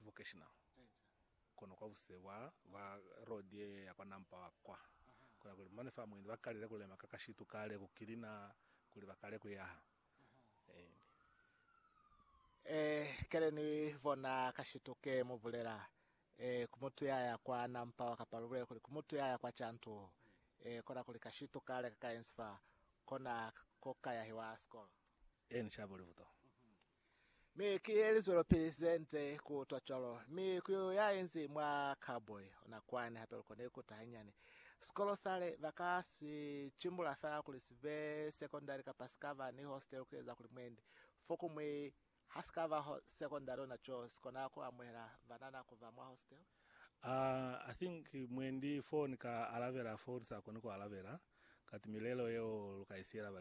vocational kono kwa busile bwa ba road ye ya kwa Nampa wa kwa kola kuli mane fa mwendi ba kalile kulema ka kashitu kale ku kilina kuli ba kale ku yaha and Eh kale ni bona kashitu ke mu bulela eh ku mutu ya ya kwa Nampa wa kapa lu bulele kuli ku mutu ya ya kwa Chantu eh kola kuli kashitu kale ka ka yensi fa kona ko ka yahiwa skola. Eh ni shabo libuto Mi ki ye li zwelopili ze nze ku utwa cwalo, mi ku ya inzi mwa cowboy ona kwani hape lu kone ku ta hanyani. Sikolo sale ba ka si cimbula fela kuli si be sekondari kapa si ka ba ni hostelu ku eza kuli mwendi. Fokuñwi ha si ka ba sekondari ona co si kona ku amuhela banana ku ba mwa hostelu. Ah, I think mwendi foo ni ka alabela foo ni sa koni ku alabela, kati milelo yeo lu ka i siyela ba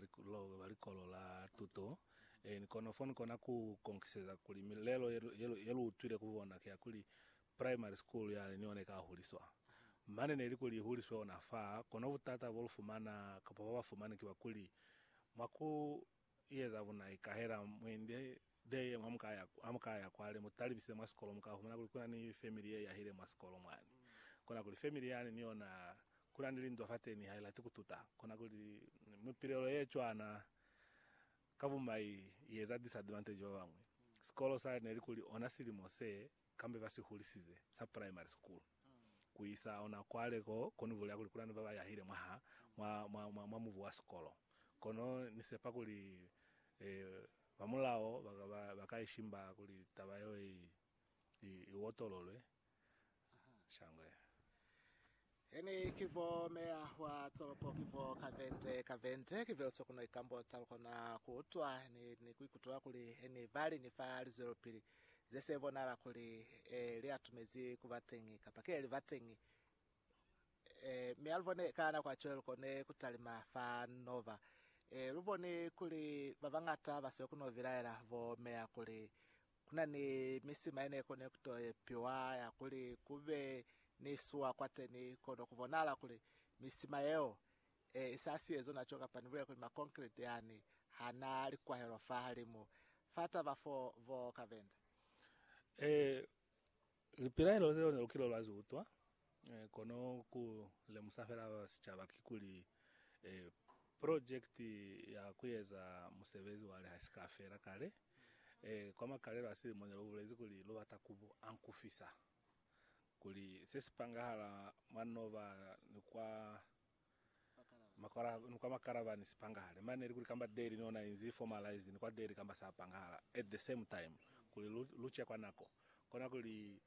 likolo la tuto. E ni kono foo ni kona ku konkiseza kuli milelo ye lu utwile ku bona ki ya kuli primary school yale ni yona i ka huliswa. Mane neli kuli i huliswe ona fa, kono butata bo lu fumana kapa ba ba fumani ki ba kuli mwa ku I eza bunai ikahela mwindi de ye mwa muka ya, ha muka ya kwale mu talibise mwa sikolo muka humana kuli kuna ni family ye yahile mwa sikolo mwani. Kona kuli family yani ni yona kuna ni lindwa fateni ha ilati kututa. Kona kuli mipilelo ye cwana ka bumai i eza disadvantage babañwi. Sikolo sa ne li kuli ona silimo se kambe ba si hulisize sa primary school ku isa ona kwale ko koni vulela kuli kuna ni ba ba yahile mwaha mwa, mwa, mwa, mwa mubu wa sikolo. Kono ni sepa kuli eh, ba mulao ba ka, ba, ba ka ishimba kuli taba yeo i, i, i otololwe. Shangwe. He ni ki vo meya wa tolopo ki vo ka vente ka vente ki velso kuno ikambota lukona ku utwa ni ni ku ikutula kuli he ni bali ni fa lizwelopili ze se bonala kuli e li atumezi ku ba teñi kapa ki he li ba teñi e mi a lu bone ka nako a cwale lu kone ku talima fa nova e lu bone kuli ba bangata ba siyo kuno bilaela bo meya kuli Ku na ni misima ye ne koni ku to epiwa ya kuli ku be ni suwa kwateni kono ku bonahala kuli misima yeo e sa si ezo naco kapa ni bulele kuli makonkreti yani ha na likwahelo fahalimu fa taba fo bo ka benda. Ee, Lipilaelo zeo ne lu kile lwa zi utwa, kono ku lemusa fela ba sicaba kikuli purojekiti ya ku eza musebezi wa leha i si ka fela kale. Kwa makalelo a silimo ne lu bulezi kuli lu bata ku ankufisa kuli se si pangahala mwa Nova ni kwa ni kwa makalaba ni sipangahale mane likuli kamba daily ni ona inzi formalized ni kwa daily kamba sa pangahala at the same time kuli lu, lu chekwa nako kona kuli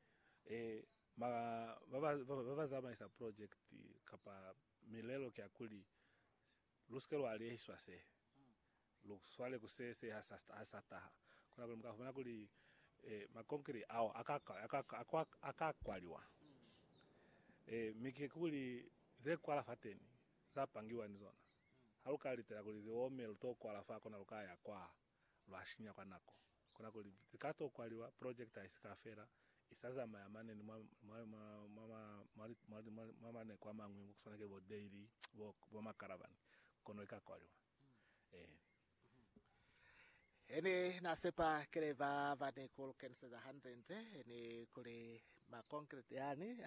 eh, ma, ba, ba, ba, ba zamaisa project kapa milelo kia kuli lu sike lwa liehiswa se Lu swale ku se, se ha sa taha. Kona kuli mu ka fumana kuli makonkiri ao a ka kwaliwa. Ee, mi ki kuli ze kwala fateni za pangiwa ni zona. Ha lu ka litela kuli zi ome, lu to kwala fa kona lu ka ya kwa lwa shinya kwa nako. Kona kuli zi ka to kwaliwa, project ha i si ka fela, i sa zamaya mane ni mwa maneko a mañwi ku swana ki bo dairy, bo makaravani, kono i ka kwaliwa. Ni na sepa kile ba ba ni ku lukeniseza hande-nde ni kuli makonkreti yani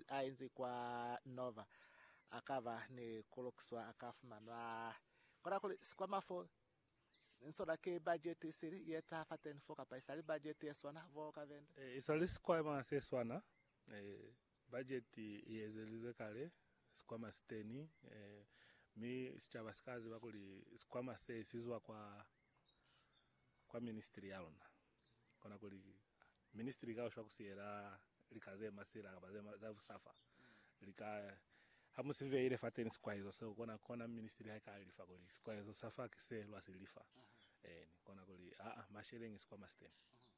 a inzi kwa Nova a ka ba ni ku lukiswa a ka fumanwa. Kona kuli sikwama fo ni sona ki bajeti isili ye taha fateni fo kapa isali bajeti ye swana fo ka venda? Isali sikwama se swana. Bajeti i ezelizwe kale, sikwama si teni, mi sicaba si ka ziba kuli sikwama se si zwa kwa, kwa ministri ya luna. Kona kuli ministri i ka ushwa ku siyela lika ze masila kapa ze, za busafa. Li ka, ha mu si beile fateni sikwaezo seo, kona, kona ministri ha i ka lifa kuli sikwaezo sa fa ki se lwa si lifa. Eeni, kona kuli, aa, masheleñi sikwama si teni.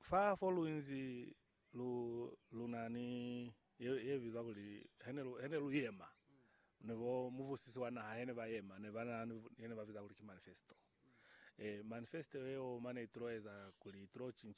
Fa fo lu inzi lu, lu na ni ye, ye bizwa kuli, he ne lu, he ne lu yema, ni bo muvusisi wa naha he ne ba yema, ne ba na ni ye ne ba biza kuli ki manifesto. E, manifesto yeo mane i tulo eza kuli, i tulo